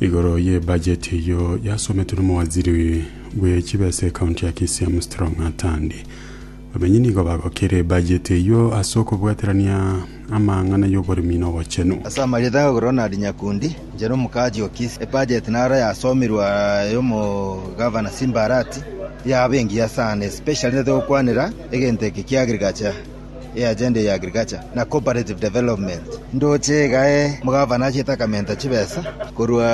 Igoro ye bajeti eyio yasometwe nomowaziri bwe chibesa ekaunti ya Kisii Amstrong Atandi. Bamenyi nigo bagokire ebajeti eyio ase okobwaterania amang'ana y'oboremi na obochenu. Ase amarieta ng'ake Ronald Nyakundi, inchera omokaachi o Kisii, ebajeti naro yasomirwe aya y'omogavana Simba Arati, yaba engiya sana, especially nete gokwanera egento eke kia agriculture. e agenda ya agriculture na cooperative development ndoche igae mogavana achiete akamenta chibesa korwa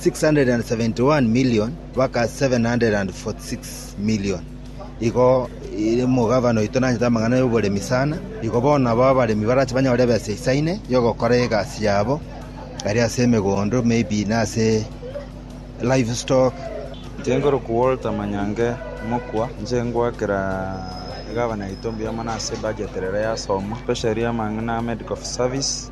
671 million baka 746 million igo ire mogavana oito nanyete amang'ana y'oboremi sana igo bono nabo abaremi barache banyore ebesa isaine yogokora egasi yabo ari ase emegondo maybe nase livestock. Tinkorokwa Walter Manyange mokwa, inche ngoakera egavana yaito mbuya mono ase ebudget ere rero yasomwa, especially amang'ana a medical service,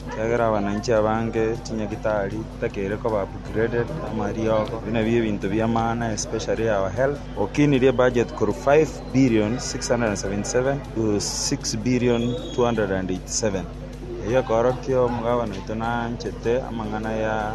ekiagera abananchi abange chinyagitari tibatakeire koba upgraded, amariogo, ebio nabio ebinto bi'amaana especially our health, okinirie ebudget korwa 5,677 to 6,287, eyio ekeorokia omogavana oito naanchete amang'ana ya.